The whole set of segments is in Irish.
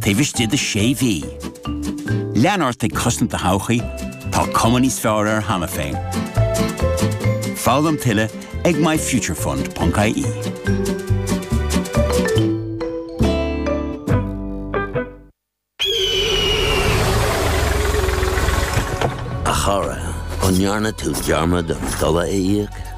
taobh istigh de sé mhí. Lean ort ag cosaint do thodhchaí, tá cuma níos fearr air cheana féin. Foghlaim tuilleadh ag myfuturefund.ie. A chara, an ndearna tú dearmad an dola a íoc?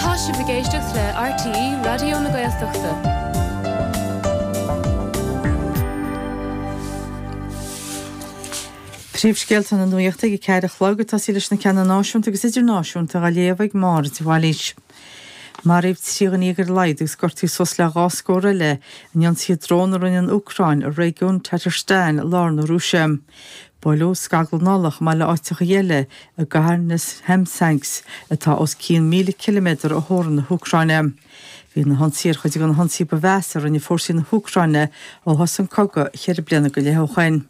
Tá sibh ag éisteacht le RTÉ Raidió na Gaeltachta. Príomhscéalta na Nuachta ag a ceathair a chlog, ag tosaí leis na ceanna náisiúnta agus idirnáisiúnta dhá léamh ag Máire de Bhailís. Maraíodh trí dhuine dhéag ar a laghad agus gortaíodh suas le dhá scór eile in ionsaithe drón a rinne an Úcráin ar réigiún Tatarstan i lár na Rúise. Buaileadh scaglann ola chomh maith le áiteachaí eile i gcathair Nizhnekamsk atá os cionn míle ciliméadar ó theorann na hÚcráine. Bhí na hionsaithe ar chuid de na hionsaithe ba mheasa a rinne fórsaí na hÚcráine ó thosaigh an cogadh cheithre bliana go leith ó shoin.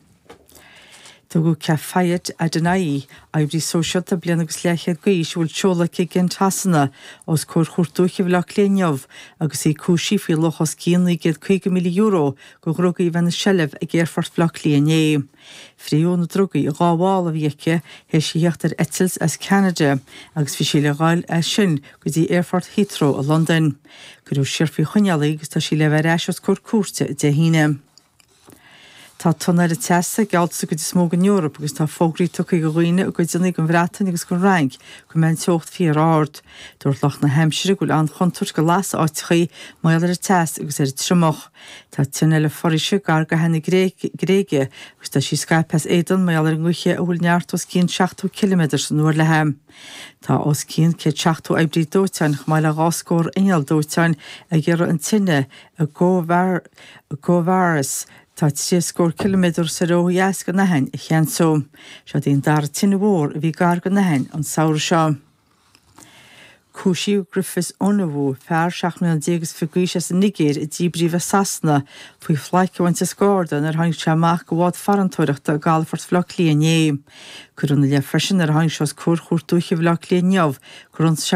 Tugadh Kefayet Adinayi, oibrí sóisialta bliain agus leathchéad d'aois a bhfuil seoladh aici i gKent Shasana, os comhair Chúirt Dúiche Bhaile Átha Cliath inniu agus í cúisithe faoi luach os cionn €950,000 de dhrugaí a bheith ina seilbh ag Aerfort Bhaile Átha Cliath inné. Frítheadh na drugaí i dhá mhála a bhí aici théis a thíocht ar eitilt as Ceanada agus bhí sí le dhul as sin go dtí Aerfort Heathrow i Londain. Cuireadh siar faoi choinneáil í agus tá sí le bheith ar ais os comhair cúirte Dé hAoine. Tá tonn eile teasa geallta sa gcuid is mó den Eoraip agus tá fógraí tugtha do dhaoine i gcuideanna den Bhreatain agus den Fhrainc go mbeidh an teocht fíor-ard. Dúirt lucht na haimsire go bhfuil an-chontúirt go lasfadh áiteachaí mar gheall ar an teas agus ar an triomach. Tá tine eile foraoise gar d'Aithin na Gréige agus tá sí scaipthe as éadan, mar gheall ar an ngaoth, a bhfuil neart os cionn 70 ciliméadar san uair léi. Tá os cionn céad seachtó oibrí dóiteáin, chomh maith le dhá scór inneall dóiteáin, ag iarraidh an tine i gKouvaras atá trí scór ciliméadar soir ó dheas den Aithin a cheansú. Seo í an dara tine mhór a bhí gar don Aithin an samhradh seo. Cúisíodh Griffiths, Onowu, fear seacht mbliana déag is fiche d'aois as an Nigéir a díbríodh as Sasana, faoi phlaic a bhaint as Garda nuair a tháinig sé amach de bhád farantóireachta i gcalafort Bhaile Átha Cliath inné. Cuireadh ina leith freisin nuair a tháinig sé os comhair Chúirt Dúiche Bhaile Átha Cliath inniu gur ionsaigh sé